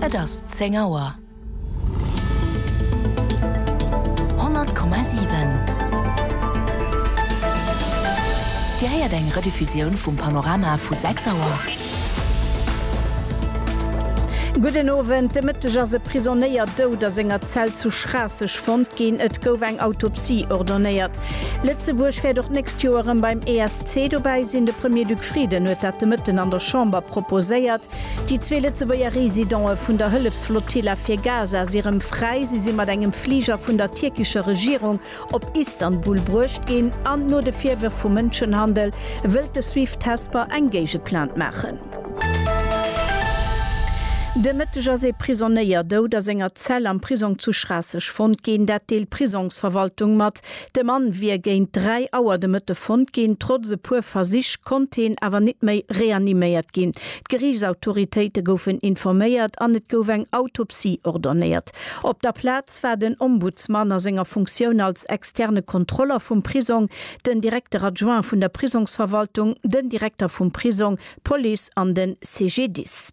Et ass zéng Auer. Honnert Komma siwen. Dir héiert eng Rediffusioun vum Panorama vu sechs Auer. Gudden Owend. De Mëtteg ass e Prisonéier dout a senger Zell zu Schraasseg fonnt ginn. Et gouf eng Autopsie ordonéiert. Lëtzebuerg wäert och d'nächst Joer erëm beim ESC Zee dobäi sinn. De Premier-Duc Frieden huet dat de Mëtten an der Chamber proposéiert. Déi zwee Lëtzebuerger Residente vun der Hëllefsflotilla fir Gaza si rëm fräi. Si si mat engem Fliger vun der tierkescher Regierung op Istanbul bruecht ginn an no de Virwërf vu Mënschenhandel wëllt de Swift Hesper eng Géigeplainte maachen. De Mëtteg ass ee Prisonéier dout a senger Zell am Prisong zu Schraasseg fonnt ginn. Dat deelt d'Prisongsverwaltung mat. De Mann wier géint 3 Auer de Mëtte fonnt ginn. Trotz e puer Versich konnt heen awer nit méi reaniméiert ginn. D'Geriichtsautoritéite goufen informéiert an et gouf eng Autopsie ordonnéiert. Op der Plaz war den Ombudsman a senger Funktioun als externe Kontroller vum Prisong, den Directeur adjoint vun der Prisongsverwaltung, den Direkter vum Prisong, d'Police an de CGDIS.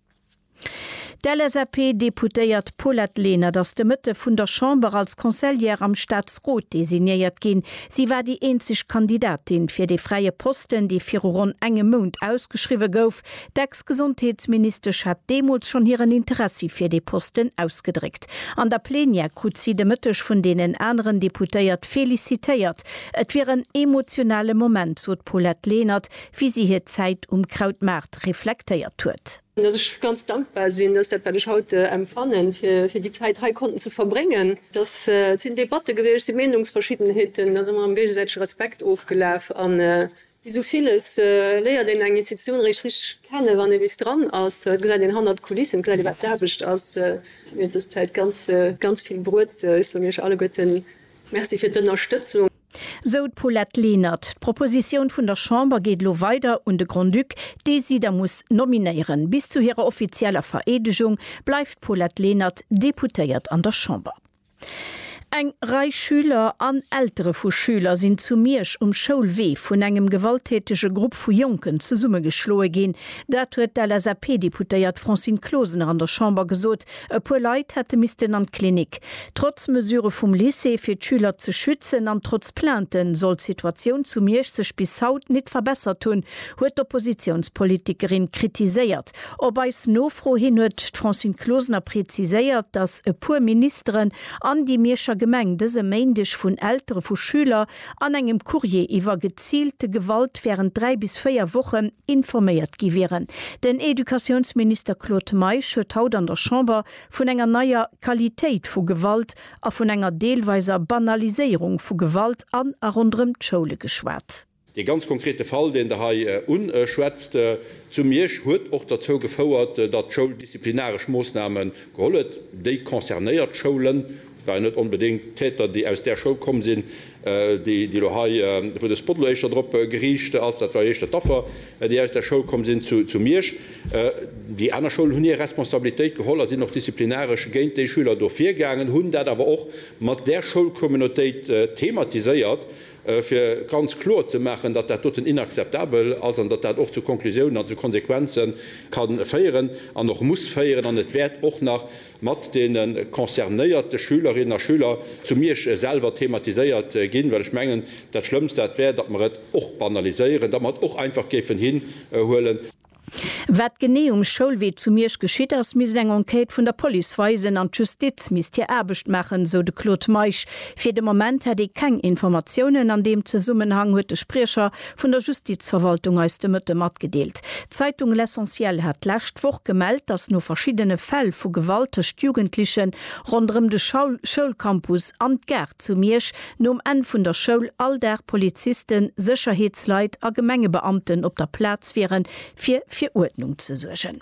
D'LSAP-Deputéiert Paulette Lenert ass de Mëtte vun der Chamber als Conseillère am Staatsrot designéiert ginn. Si war déi eenzeg Kandidatin fir dee fräie Posten, dee viru ronn engem Mount ausgeschriwwe gouf. D'Ex-Gesondheetsministesch hat deemools schonn hiren Interessi fir dee Posten ausgedréckt. An der Plenière krut si de Mëtteg vun deenen aneren Deputéiert felicitéiert. Et wier en emotionale Moment, sot d'Paulette Lenert, wéi si hir Zäit um Krautmaart reflektéiert huet. dass ech ganz dankbar sinn, dass dat, wat ech haut empfannen, fir déi Zäit hei konnten ze verbréngen, dass et sinn Debatte gewiescht, et si Meenungsverschiddenheeten, da si mer am géigesäitege Respekt ofgelaf. A wéi esou villes léiert een eng Institutioun eréischt richteg kennen, wann ee bis dran ass. Da gesäit een hannert d'Kulissen, gesäit ee wat d'Aarbecht ass. Mir huet dës Zäit ganz, ganz vill bruet. Ech soen iech alleguerten Merci fir d'Ënnerstëtzung. Sou d'Paulette Lenert. D'Propositioun vun der Chamber geet elo weider un de Grand-Duc, dee si da muss nominéieren. Bis zu hirer offizieller Vereedegung bleift d'Paulette Lenert Deputéiert an der Chamber. Eng Rei Schüler an Eltere vu Schüler sinn zu Miersch um Schoulwee vun engem gewalttätege Grupp vu Jonken zesummegeschloe ginn. Dat huet d'LSAP-Deputéiert Francine Closener an der Chamber gesot, E puer Leit hätte missten an d'Klinik. Trotz Mesure vum Lycée fir d'Schüler ze schützen an trotz Plainten soll d'Situatioun zu Miersch sech bis haut nit verbessert hunn, huet d'Oppositiounspolitikerin kritiséiert. Op eis Nofro hin huet d'Francine Closener preziséiert, datt e puer Ministeren an déi Mierscher Gemeng dëse Méindeg vun Eltere vu Schüler an engem Courrier iwwer geziilte Gewalt während dräi bis véier Wochen informéiert gi wieren. Den Educatiounsminister Claude Meisch huet haut an der Chamber vun enger neier Qualitéit vu Gewalt a vun enger deelweiser Banaliséierung vu Gewalt an a ronderëm d'Schoule geschwat. Dee ganz konkrete Fall, deen Der hei uschwätzt, zu Miersch, huet och derzou gefouert, datt d'Schoul disziplinaresch Moossname geholl huet. Déi concernéiert Schoulen waren net onbedéngt Täter, déi aus där Schoul komm sinn, déi elo hei, wou de Spot elo éischter drop geriicht ass, dat war jo éischter d'Affer, déi aus där Schoul komm sinn zu Miersch. Déi aner Schoulen hunn hir Responsabilitéit geholl a sinn och disziplinaresch géint déi Schüler do virgaangen, hunn dat awer och mat där Schoulcommunautéit thematiséiert, fir ganz kloer ze maachen, datt dat doten inakzeptabel ass an datt dat och zu Konklusiounen an zu Konsequenze ka féieren an och muss féieren an et wäert och nach mat deene concernéierte Schülerinnen a Schüler zu Miersch selwer thematiséiert ginn, well ech mengen, dat Schlëmmst dat wär, datt mer et och banaliséieren, datt mer et och einfach géifen hinhuelen. Wat genee um Schoulwee zu Miersch geschitt ass, misst eng Enquête vun der Police weisen an d'Justiz misst hir Aarbecht maachen, sou de Claude Meisch. Fir de Moment hätt ee keng Informatiounen. An deem Zesummenhang huet de Spriecher Vun der Justizverwaltung eis de Mëtte matgedeelt. D'Zeitung L'Essentiel hat d'lescht Woch gemellt, datt no verschiddene Fäll vu Gewalt tëscht Jugendliche ronderëm de Schoulcampus an d'Gare zu Miersch nom Enn vun der Schoul all Dag Polizisten, Sécherheetsleit a Gemengebeamten op der Plaz wieren, fir fir Uerdnung ze suergen.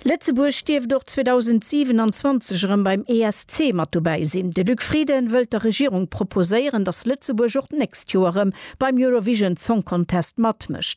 Lëtzebuerg dierft och 2027 erëm beim ESC mat dobäi sinn. De Luc Frieden wëllt der Regierung proposéieren, datt Lëtzebuerg och d'nächst Joer erëm beim Eurovision Song Contest matmécht.